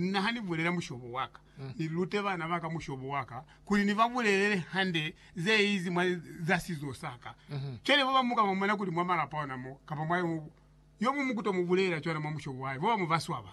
Na ha ni bulela mushobo wa ka, ni lute bana ba ka mushobo wa ka, kuli ni ba bulelele hande ze izi mwa za sizo sa ka. Cwale ba bamu ka ba mona kuli mwa malapa ona mo, kapa mwa yo, yo mumu ku to mu bulelela cwana mwa mushobo wa hae, ba bamu ba swaba.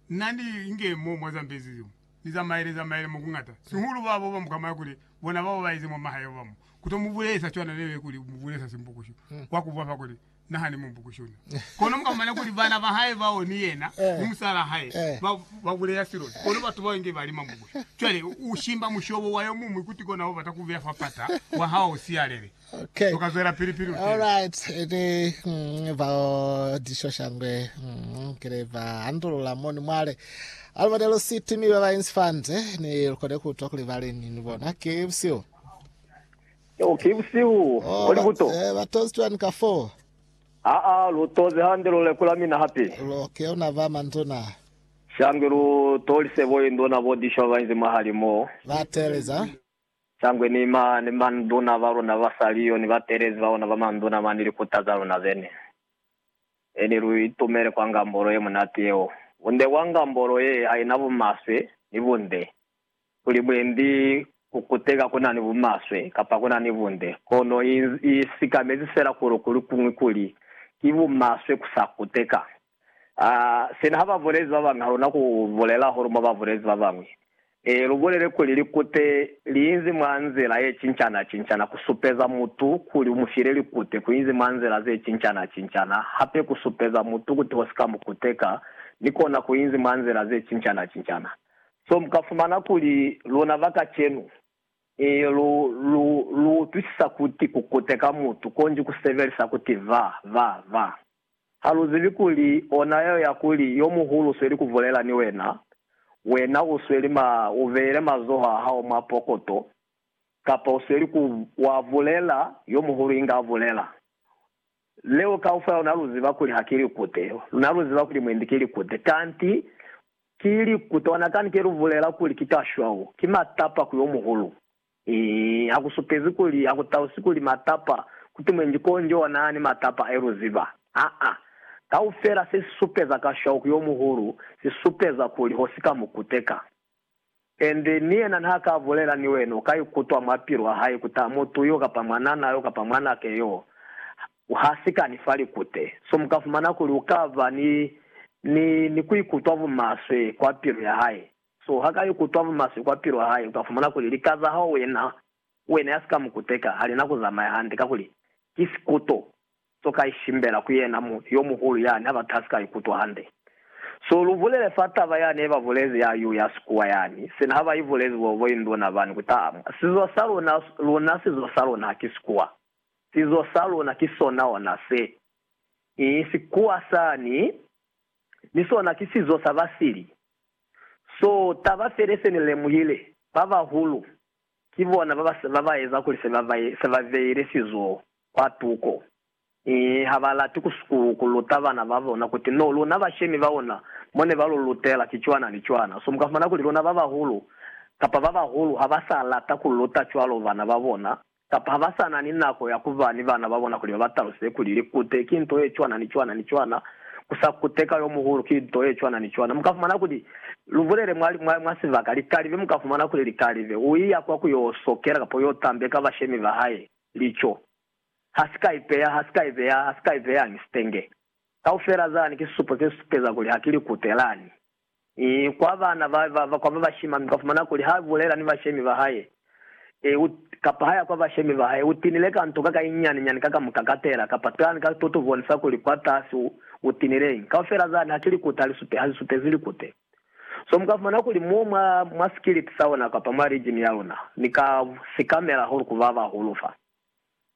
Na ni inge mo mwa za mbezi zeo, ni zamaele, zamaele mo ku ngata, sihulu ba ba bamu ka mona kuli bona bao ba ize mwa mahae ba bamu, ku to mu bulelesa cwana leo ye kuli mu bulelesa simbukusho wa ku bwa fa kuli, naha ni mubu kushuna. Kono mukamana kuli bana bahae bao ni yena ni musalaa hae ba ba buleya siloni, kono batu bao inge bali mamubusha. Cwale u shimba mushobo wa yomuñwi kuti kona ho bata kubeya fa pata wa hao u siyalele. Okay. Uka zwelapili pili u teni. Alright, ni mm, bao dishoshangwe mm, kile ba andulula moni mwale Almada lo City mi ba ba Insfante ni lukone kutwa kuli ba leni ni bona ke busio. Yeo ki busihu bo li buto. Oh, ba tozi cwani ka foo? Aa, lu tozi hande lu lekula mina hape. Lu ke una ba manduna. Shangwe lu tolise bo induna bo dishwa ba inzi mwahali mo. Ba teeleza. Shangwe ni ma, ni manduna ba luna ba sa liyo, ni batelezi ba bona ba manduna mwa ni likuta za luna zene. Eli lu itumele kwa ngambolo ye munati yeo. Bunde bwa ngambolo ye haina bumaswe ni bunde. Kuli mwendi ku kuteka ku na ni bumaswe kapa ku na ni bunde, kono i sikamezi fela kuli ku lukuñwi kuli ki bumaswe ku sa kuteka. A sina ha ba bulezi ba bañwi ha lu na ku bulela hahulu mwa ba bulezi ba bañwi. Ee, lu bulele kuli likute li inzi mwa nzila ye cincana-cincana ku supeza mutu kuli u mu file likute, ku inzi mwa nzila ze cincana-cincana hape ku supeza mutu kuti ho si ka mu kuteka, ni kona ku inzi mwa nzila ze cincana-cincana. So mu ka fumana kuli, luna ba kacenu, i, lu, lu, lu utwisisa kuti ku kuteka mutu konji ku sebelisa kuti va, va, va. Ha lu zibi kuli, ona yeo ya kuli, yo muhulu u sweli ku bulela ni wena, wena u sweli ma, u beile mazoho a hao mwa pokoto, kapa u sweli ku, wa bulela, yo muhulu inga a bulela. Leo kaufela luna lu ziba kuli ha ki likute. Luna lu ziba kuli mwendi ki likute. Kanti ki likute. Ona kani ke lu bulela kuli ki kashwau, ki matapa ku yo muhulu. Ii, ha ku supezi kuli, ha ku talusi kuli matapa, kuti mwendi konjo ona ni matapa ayo, lu ziba. Aa. Kaufela se si supeza kashwau ku yo muhulu, si supeza kuli ho si ka mu kuteka. And ni yena nha ka bulela ni wena u ka ikutwa mwa pilu ya hae kut'a mutu yo kapa mwanana yo kapa mwanake yo ha si ka ni fa likute. So mu ka fumana kuli u ka ba ni, ni, ni ku ikutwa bumaswe kwa pilu ya hae. So ha ka ikutwa bumaswe kwa pilu ya hae, u ka fumana kuli lika za hao wena, wena ya si ka mu kuteka, ha li na ku zamaya hande, kakuli ki sikuto. So ka ishimbela ku yena mu yo muhulu yani ha ba kasi ka ikutwa hande. So lu bulele fa taba yani ye ba bulezi ya yu ya sikuwa yani, sina ha ba ibulezi bo bo induna bani ku tamu. Sizo sa luna, luna sizo sa luna ha ki sikuwa. Sizo sa luna ki sona ona se. I sikuwa sani, ni sona ki sizo sa ba sili. So taba fele se ni lemuhile, ba bahulu ki bona ba ba, ba ba eza kuli se ba, se ba beile sizo kwa tuko. Ee, ha ba lati ku sukulu ku luta bana ba bona kuti no, luna bashemi ba ona mo ne ba lu lutela ki cwana ni cwana. So, mu ka fumana kuli luna ba bahulu, kapa ba bahulu ha ba sa lata ku luta cwalo bana ba bona, kapa ha ba sa na ni nako ya ku ba ni bana ba bona kuli ba ba taluseze kuli likute ki nto ye cwana ni cwana ni cwana, ku sa kute ka yo muhulu ki nto ye cwana ni cwana. Mu ka fumana kuli, lu bulele mwa, mwa, mwa sibaka, likalibe, mu ka fumana kuli likalibe, u iya kwa ku yo sokela kapa u yo tambeka bashemi ba hae. Lico. Ha si ka ipeya, ha si ka ipeya, ha si ka ipeya, ni sitenge. Kaufela zani ki sisupo se supeza kuli ha ki likute lani. I kwa bana ba, ba, ba, kwa ba bashima, mi ka fumana kuli ha bulela ni bashemi ba hae, e, u, kapa ha ya kwa bashemi ba hae, u tinile ka nto kaka inyani nyani ka kamuka katela, kapa tani ka, to, to bonisa kuli kwa tasi u, u tinile eng. Kaufela zani ha ki likute, ha li supe, ha li supezi likute. So mu ka fumana kuli mo mwa, mwa sikilipi sa ona kapa mwa rijini ya luna, Ni ka si kamela hulu ku babahulu fa.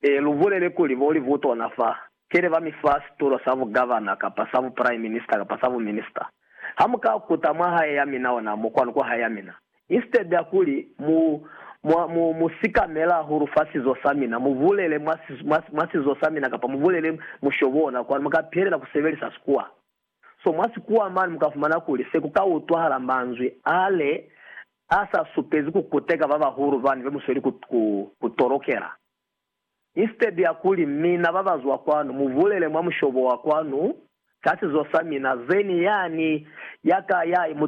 E, lu bulele kuli, Bo libutona fa, kele ba mi fa situlo sa bugavana, kapa sa buprime minister, kapa sa buminister. Ha mu ka kuta mwa hae ya mina ona mo kwanu, kwa hae ya mina, instead ya kuli mu, mu, mu, mu si kamela hahulu fa sizo sa mina, mu bulele mwa, mwa, mwa sizo sa mina, kapa mu bulele mushobo ona kwanu, mu ka pihelela ku sebelisa Sikuwa. So mwa sikuwa mane mu ka fumana kuli se ku ka utwahala manzwi a le a sa supezi ku kuteka ba bahulu bani be mu sweli ku, ku, ku tolokela. Instead ya kuli, Mina ba ba zwa kwanu, mu bulele mwa mushobo wa kwanu, ka sizo sa mina, zeni yani ya ka ya, mu,